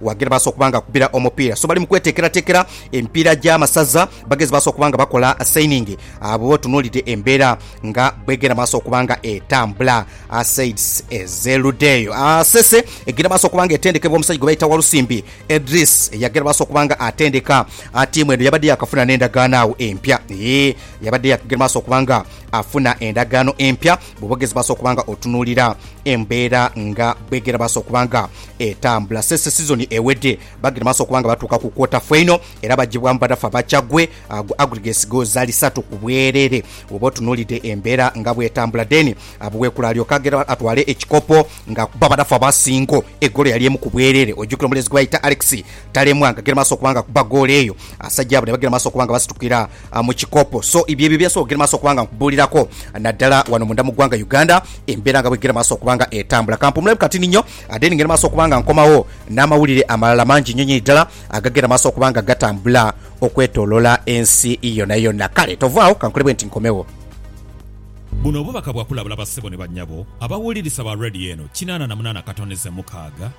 Wagge baasa okuba nga akubira omupiira so bali mu kweteekerateekera emipiira gy'amasaza. Bagezi baasa okuba nga bakola sayiningi bw'oba otunuulidde embeera nga bw'egenda maaso okuba nga etambula, said Sseludeeyo. Sese egenda maaso okuba nga etendekebwa omusajja gwe bayita Walusimbi Edris eyagenda maaso okuba nga atendeka ttiimu eno. Yabadde yaakafuna n'endagaano agho empya. Yee, yabadde yaakagenda maaso okuba nga afuna endagaano empya. Bwoba ogezi baasa okuba nga otunuulira embeera nga bwegera baasa okuba nga etambula sese sizoni ewedde bagenda maaso okuba nga batuuka ku kwota faino era bagibwamu badafa bakya gwe agwa aggregates goals zali satu ku bwerere bwoba otunuulidde embeera nga bwetambula then Abuwekula alyoke agere atwale ekikopo nga akuba badafa ba Ssingo egoolo yali emu ku bwerere ojjukira omulezi gwe bayita Alex Talemwa nga gere maaso okuba nga akuba goolo eyo, abasaja abo nebagere maaso okuba nga basitukira mu kikopo. So ibyo ebyo byensobola ogere maaso okuba nga nkubuulirako naddala wano munda mu ggwanga Uganda embeera nga bwegere maaso okuba nga etambula. Kampumulemu katini nnyo then ngende maaso okuba nga nkomawo n'amawulire amalala mangi nnyo nnyo ddala agagenda maaso okuba nga gatambula okwetolola ensi yona yona. Kale tovaawo kankole bwenti nkomewo. Buno obubaka bwa kulabula bassebo ne bannyabo abawulirisa ba Radio eno kinaana na munaana katondeze mukaaga.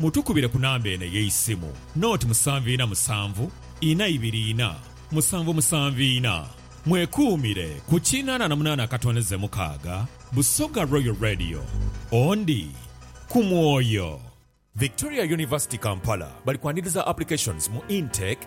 Mutukubire ku namba eno ey'eisimu, noti musanvu ina musanvu ina ibiri ina musanvu musanvu ina. Mwekuumire ku kinana na munana akatondeze mukaaga. Busoga Royal Radio, Ondi ku mwoyo. Victoria University Kampala bali kwaniriza applications mu Intake.